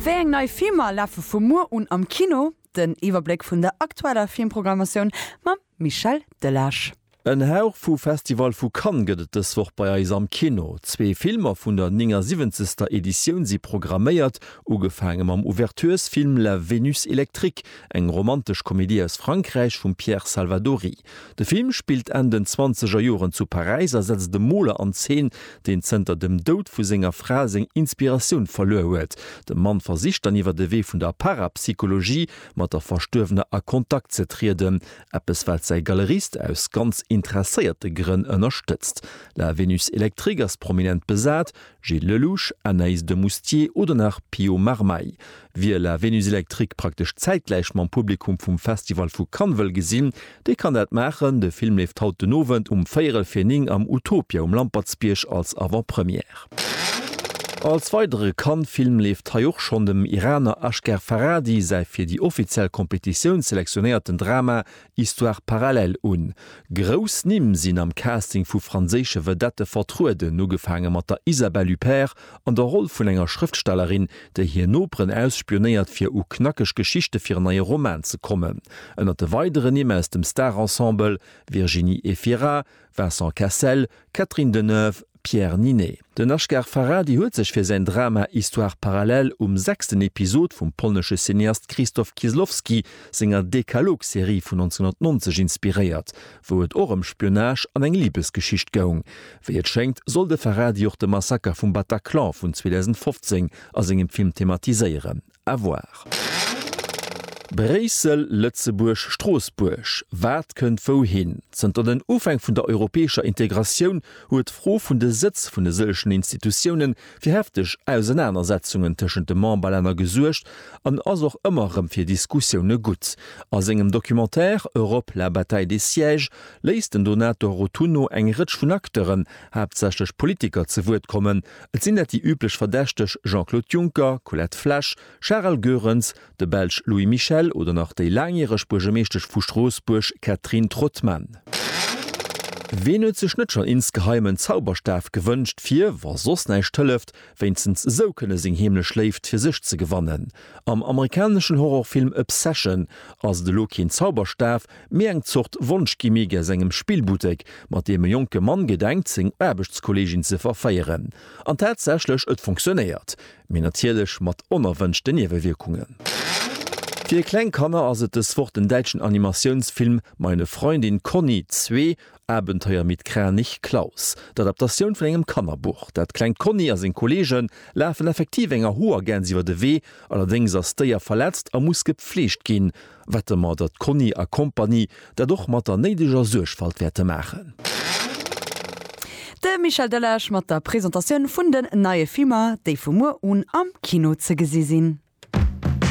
Wéi eng nei Filmer lafe vu muer un am Kino? Den Iwwerbléck vun der aktueller Filmprogrammatioun mam Michel Delage. En Hauch vu Festival vu Cannes gëtt et dës Woch bei eis am Kino. Zwee Filmer vun der 79. Editioun si programméiert, ugefaange mam Ouverturesfilm La Vénus électrique, eng romantesch Komedie aus Frankräich vum Pierre Salvadori. De Film spillt Enn den zwanzeger Joren zu Paräis a setzt e Moler an Zeen, deen zënter dem Doud vu senger Fra seng Inspiratioun verluer huet. De Mann versicht dann iwwer de Wee vun der Parapsychologie mat der Verstuerwener a Kontakt ze trieden, eppes wat säi Galerist aus ganz interesséierte Grënn ënnerstëtzt. La Vénus Électrique ass prominent besat, Gilles Lellouche, Anaïse de Moustier oder nach Pio Marmaille. Wie La Vénus Électrique praktesch zäitgläich mam Publikum vum Festival vu Cannes wëll gesinn, dee kann dat maachen, de Film leeft haut den Owend um véierel vir 9 am Utopia um Lampertsbierg als Avant-Première. Als weidere Cannes-Film leeft hei och schonn dem Iraner Asghar Farhadi säi fir déi offiziell Competitioun selektionéierten Drama Histoire parallèle un. Grouss Nimm sinn am Casting vu franséische Vedette vertrueden, ugefaange mat der Isabelle Huppert an der Roll vun enger Schrëftstellerin, déi hir Noperen ausspionéiert fir u knackeg Geschichte fir en neie Roman ze kommen. Ënnert de weidere Nimm aus dem Star-Ensemble, Virginie Efira, Vincent Cassel, Catherine Deneuve, Pierre Ninet. Den Ashgar Farhadi huet sech fir säin Drama Histoires parallèles um sechsten Episod vum polnesche Cineast Krzysztof Kieslowski senger Dekalog-Serie vun 1990 inspiréiert, wou et och ëm Spionage an eng Libesgeschicht goung. Wéi et schéngt, soll de Farhadi och de Massaker vum Bataclan vun 2015 a sengem Film thematiséieren. À voir. Bréissel, Lëtzebuerg, Stroossbuerg, Wat kënnt wouhin? Zënter den Ufäng vun der europäescher Integratioun huet d'Fro vun de Sëtz vun e sëllechen Institutioune fir hefteg Ausenanersetzungen tëschent de Memberlänner gesuergt an ass och ëmmer erëm fir Diskussioune gutt. A sengem Documentaire Europe, la bataille des sièges léisst den Donato Rotunno eng Rëtsch vun Acteuren, haaptsächlech Politiker, ze Wuert kommen, Et sinn dat déi üblech Verdächteg, Jean-Claude Juncker, Colette Flesch, Charel Goerens, de Belsch Louis Michel oder nach déi laangjäreg Buergermeeschtesch vu Stroossbuerg Catherine Trottmann. Ween huet sech net schonn insgeheim en Zauberstaf gewënscht fir, wa soss näischt hëlleft, wéinstens esou kënne seng heemlech Léift fir sech ze gewannen? Am amerikaneschen Horrorfilm Obsession ass et elo keen Zauberstaf, Méi eng Zort Wonschgimmick aus engem Spillbuttek, mat deem e jonke Mann gedenkt, seng Aarbechtskolleegin ze verféieren. An tatsächlech, et funktionéiert. Mee natierlech mat onerwënschten Niewewierkungen. Fir kleng Kanner ass et dës Woch den däitschen Animatiounsfilm Meine Freundin Conny 2, Abenteuer mit Kranich Claus. D'Adaptatioun vun engem Kannerbuch. Dat klengt Conny a seng Kolleege lafen effektiv enger Hoergäns iwwer de Wee. Allerdéngs ass d'Déier verletzt a muss gepfleegt ginn. Wette mer datt Conny a Compagnie dat och mat der néideger Suergfalt wäerte maachen. De Michel Delage mat der Presentatioun vun den neie Filmer, déi vu muer un am Kino ze gesi sinn.